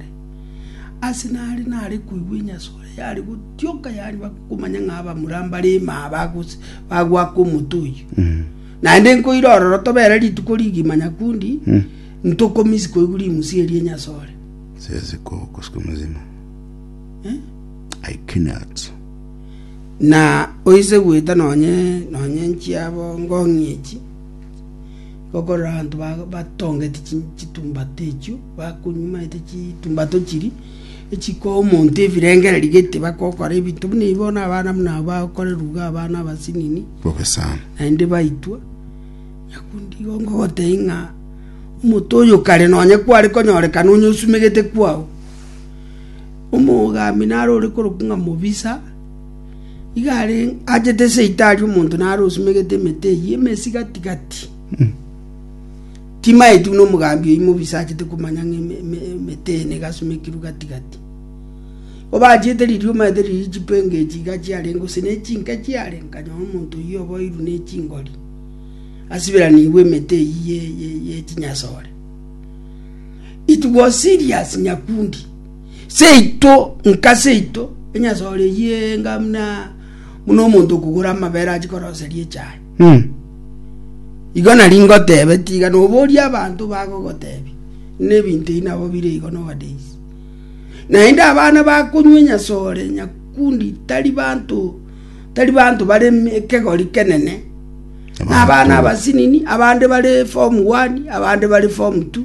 Nyasae. Ase nare nare koigwa enyasore yare gotioka yariba komanya ng'a abamura mbare ime aba gose bagoaka omote oyio. Naende nkoira ororo tobere rituko rigima nyakundi ntokomisi koigwa rimusia eria enyasore. Siwezi ku- kusiku mzima. I cannot. Na oise gweta nonye nonye nchiabo ngong'ie echi Gokorera abanto batongeti chitumbato echio, bakonywomete chitumbato chiria, echikoa omonto ebirengererio gete, bagokora ebinto buna ebi, bono abana buna aba bakoreruga abana abasinini, Bogesana. naende baitwa. Nyakundi igo ngogotebia ng'a omonto oyo kare nonye kware konyorekana onye osumegete kwao, omogambia naro ore korokwa ng'a mobisa. Igo achete seito aria omonto naro osumegete emete eyio emesi gati‐gati. Timaeti buna omogambi oyio mobisa achete komanya ng'a emete eye nigo asumekirwe gati‐gati. Igo bachiete riria omanyete riria chipenge echi iga chiarenge gose ne chinke chiare nkanyora omonto oyio oboirwe ne chingori asiberanigwe emete eyio ye chinyasore. It was serious nyakundi. Seito, nka seito, enyasore eyio enga buna buna omonto okogora amabere achie koroseria echae. Mm. Igo nari ngotebe, tiga noborie abanto bagogotebia, ng'a ebinto ebi nabo bire igo nowadays. Naende abana bakonywa enyasore, nyakundi, tari banto tari banto bare eme- ekegori kenene, na abana abasinini, abande bare form one, abande bare form two.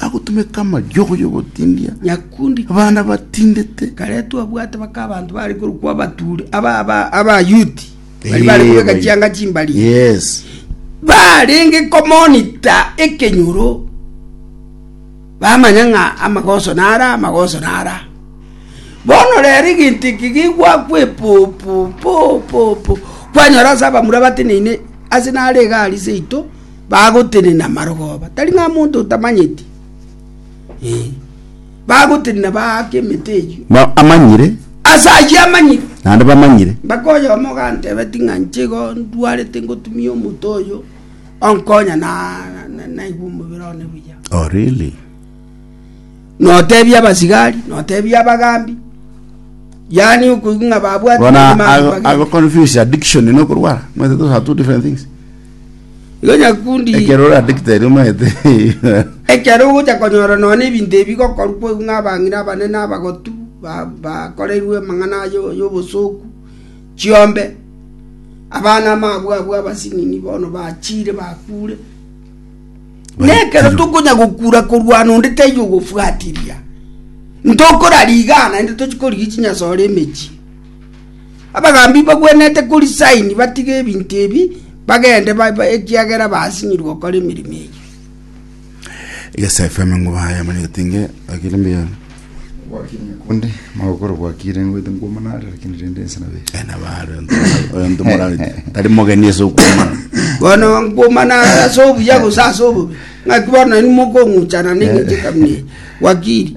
Bagotumeka amayogwa y'ogotindia nyakundi abana batindete. Kare twabwate baka abanto bare korokwa abaturi aba aba abayuti bari bare Eeh, kobeka bai. chianga chimbari Yes. barenge komonita ekenyoro bamanya ng'a amagoso nara amagoso nara bono rero egento eke gegwakwa epopo popopo kwanyora ase abamura bateneine ase naro egari seito bagotenena amarogoba, tari ng'a monto otamanyeti, ee, bagotenena baake emete eyio. Na amanyire. Ase ayio amanyire. Naende bamanyire. Mpaka oyomo ogantebeti ng'a inche igo ndwarete ngotumia omote oyo onkonya na naigwe omobere one buya. Oh, really? Notebia abasigari, notebia abagambi, yaani okoigwa ng'a babwati. Bono ago confuse addiction no kurwara. Mwete those are two different things. Igo nyakundi Ekero orandekete aria omanyete ekero ogocha konyora nonya ebinto ebi bigokorwa kwa ng'a abang'ina abanene abagotu ba- bakoreirwe amang'ana ayo- y'obosoku chiombe, abana ababo abwo abasinini bono bachire bakure. Na ekero Baitirwe. tokonya gokura korwana onde taiyo ogofuatiria, ntokorariga naende tochi korigia chinyasore emechie. Abagaambi bagwenerete korisaini batige ebinto ebi, bagende, ekiagera baasinyirwe gokora emeremo eyio. Egesaifo emengo baye amanyegete inge akire mbuya. Gwakiire nyakundi, magokoro gwakiire ngoite nkwomanare, lakini rende ense nabe. Ena bare oyo ntomorarete tari mogeni ase okwomana. Bono nkwomana ase obuya gose ase obobe, ng'aki bono nainwe mokong'uchana neng'encho ekamuna eye. Wakiri.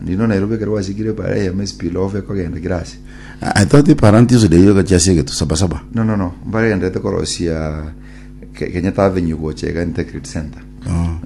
Nainwe Nairobi ekero gwasikire para eyemo espeed loaf ekogenda kira ase. I thought Parantius Day ogachia ase egetu saba saba. No no no mbare genderete korosia Ke- Kenyatta Avenue gocha iga integrity center. Bono